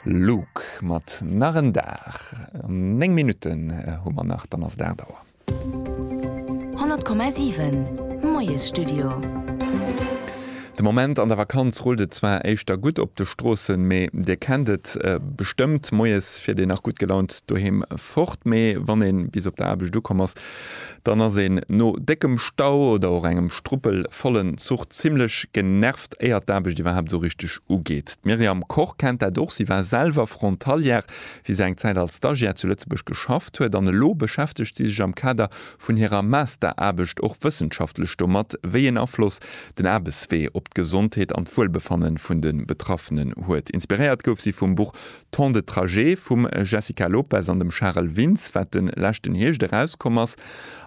Luke mat Nach en Dag. 9 Minutten hu mer nach, dann ass et 8 Auer. 100,7 Moiesstudio. De Moment an der Vakanz rullt et zwar éischter gutt op de Stroossen, mee Dir kennt et bestëmmt, Moies fiert een nach gutt gelaunt doheem fort, mee wann ee bis op der Aarbecht ukomm ass, dann ass een no déckem Stau oder och engem struppelvollen Zuch zimlech genervt. éier d'Aarbecht iwwerhaapt esou richteg ugeet. D'Myriam Koch kennt dat och, si war selwer Frontalière, wéi se eng Zäit als Stagiaire zu Lëtzebuerg geschafft huet an elo beschäftegt si sech am Kader vun hirer Masteraarbecht och wëssenschaftlech domat, wéi een Afloss den Aarbechtswee op d'Gesondheet an d'Wuelbefanne vun de Betraffenen huet. Inspiréiert gouf si vum Buch Temps de trajet vum Jessica Lopes an dem Charel Vins, wat de leschten Hierscht erauskomm ass.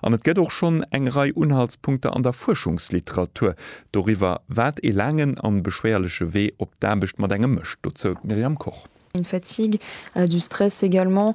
An et gëtt och schonn eng Rei Unhaltspunkter an der Fuerschungsliteratur doriwwer, wat ee laangen an beschwéierleche Wee op d'Aarbecht mat engem mécht. Dozou d'Myriam Koch. Une fatigue, du stress également.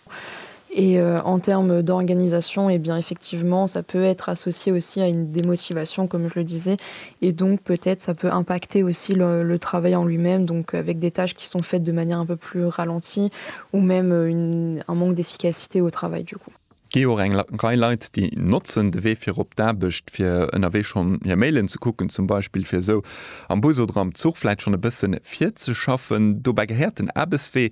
Et en termes d'organisation, eh bien effectivement ça peut être associé aussi à une démotivation comme je le disais et donc peut-être ça peut impacter aussi le le travail en lui-même donc avec des tâches qui sont faites de manière un peu plus ralentie ou même une un manque d'efficacité au travail du coup. Gi jo och eng Rei Leit déi notzen de Wee fir op d'Aarbecht fir ënnerwee schonn hir Mailen ze kucken zum Beispill fir esou am Bus oder am Zuch vläit schonn e bësse virzeschaffen. Dobäi gehéiert den Aarbechtswee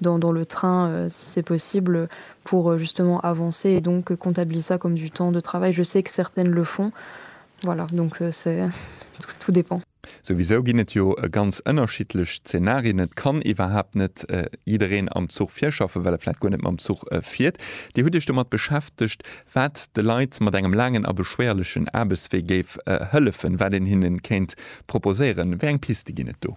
dans dans le train si c'est possible pour justement avancer et donc comptabiliser ça comme du temps de travail, je sais que certaines le font voilà donc c'est tout dépend. Souwisou ginn et jo ganz ënnerschiddlech Zeenarien, et kann iwwerhaapt net jiddereen am Zuch virschaffen, well e vläicht guer net mam Zuch fiert. Dir hutt Iech domat beschäftegt, wat de Leit mat engem laangen a beschwéierlechen Aarbechtswee géif hëllefen, wat een hinne kéint proposéieren. Wéi eng Piste ginn et do?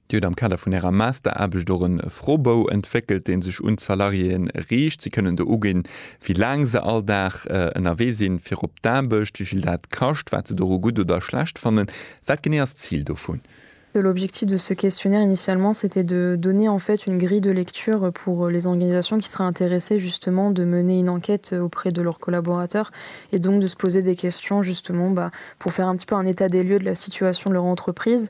Dir hutt am Kader vun Ärer Masteraarbecht och e Froebou entwéckelt, dee sech un d'Salariéë riicht. Si kënnen do uginn, wéi laang se all Dag ënnerwee sinn fir op d'Aarbecht, wéi vill dat kascht, wat se doru gutt oder schlecht fannen. Wat genee ass d'Zil dovun? L'objectif de ce questionnaire initialement c'était de donner en fait une grille de lecture pour les organisations qui seraient intéressées justement de mener une enquête auprès de leurs collaborateurs et donc de se poser des questions justement pour faire un petit peu un état des lieux de la situation de leur entreprise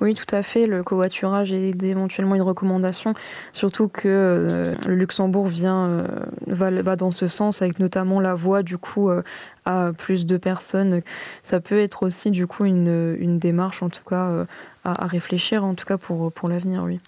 Oui, tout à fait, le covoiturage est éventuellement une recommandation, surtout que le Luxembourg vient, va, va dans ce sens avec notamment la voie du coup à plus de personnes. Ça peut être aussi du coup une, une démarche en tout cas à, à réfléchir en tout cas pour, pour l'avenir, oui.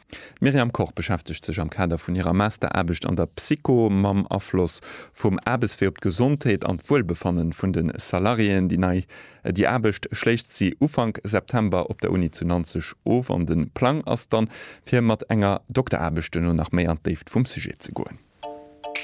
D'Myriam Koch beschäftegt sech am Kader vun hirer Masteraarbecht an der Psycho mam Afloss vum Aarbechtswee op d'Gesondheet an d'Wuelbefanne vun de Salariéen. Déi nei Déi Aarbecht schléisst si Ufank September op der Uni zu Nanzeg of an de Plang ass dann, fir mat enger Dokteraarbecht duerno nach méi an d'Déift vum Sujet ze goen.